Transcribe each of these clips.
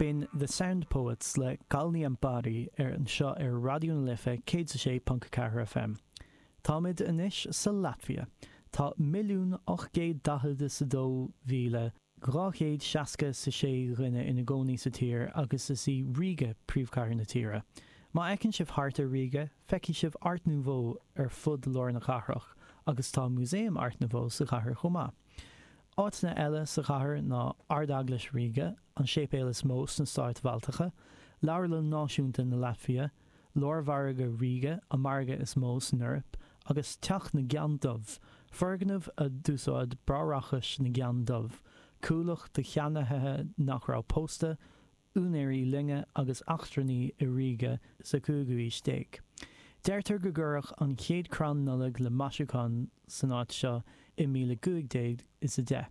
B'in The Sound Poets le Kalniem pāri anseo ar Raidió na Life 106.4 FM. Táimid anois sa Laitvia. Tá 1,842,260 is 6 dhuine ina gcónaí sa tír agus is í Ríge príomhchathair na tíre. Má fheiceann sibh thart ar Ríge, feicfidh sibh Art Nouveau ar fud lár na cathrach agus tá Músaem Art Nouveau sa chathair chomh maith. Áiteanna eile sa chathair ná Ardeaglais Ríge, an séipéal is mó sna Stáit Bhaltacha, Leabharlann Náisiúnta na Laitvia, Lármhargadh Ríge, an margadh is mó san Eoraip, agus Teach na gCeann Dubh, foirgneamh a d'úsáid Bráithreachas na gCeann Dubh, cuallacht do cheannaithe nach raibh pósta, úinéirí loinge agus eachtrannaigh i Ríge sa chúigiú aois déag. Deirtear go gcuireadh an chéad crann Nollag le maisiúcháin san áit seo i míle cúig déag is a deich.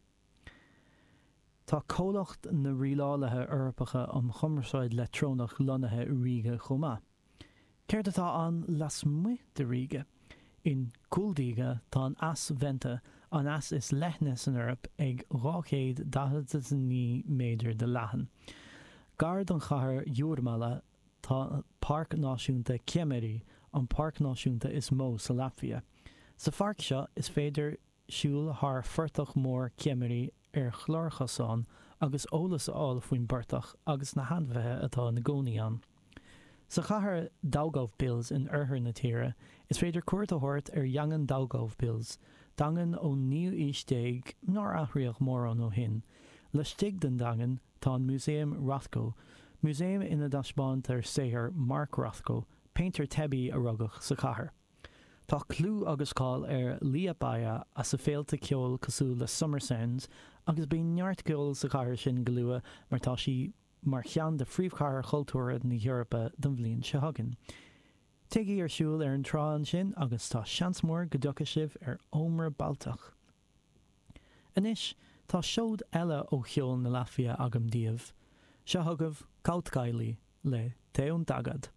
Tá comhlacht na Rialálaithe Eorpacha um Chumarsáid Leictreonach lonnaithe i Ríge chomh maith. Céard atá ann lasmuigh de Ríge? In Kuldīga tá an eas Venta, an eas is leithne san Eoraip, ag 249 méadar de leathan. Gar don chathair Jūrmala tá Páirc Náisiúnta Ķemeri, an páirc náisiúnta is mó sa Laitvia. Sa pháirc seo is féidir siúl thar phortach mór Ķemeri ar chlárchosán agus eolas a fháil faoin bportach agus na hainmhithe atá ina gcónaí ann. Sa chathair Daugavpils in oirthear na tíre, is féidir cuairt a thabhairt ar Dhaingean Daugavpils, daingean ón naoú aois déag nár athraíodh mórán ó shin. Laistigh den daingean tá an Músaem Rothko, músaem ina dtaispeántar saothar Mark Rothko, péintéir teibí a rugadh sa chathair. Tá clú agus cáil ar Liepāja as a féilte ceoil cosúil le Summer Sounds agus bíonn neart ceoil sa chathair sin go luath mar tá sí mar cheann de phríomhchathair chultúrtha na hEorpa don bhliain seo chugainn. Téigí ar siúl ar an trá ansin agus tá seans mór go dtiocfaidh sibh ar ómra Baltach. Anois tá seoid eile ó cheol na Laitvia agam daoibh. Seo chugaibh Kautkaili le Te un tagad.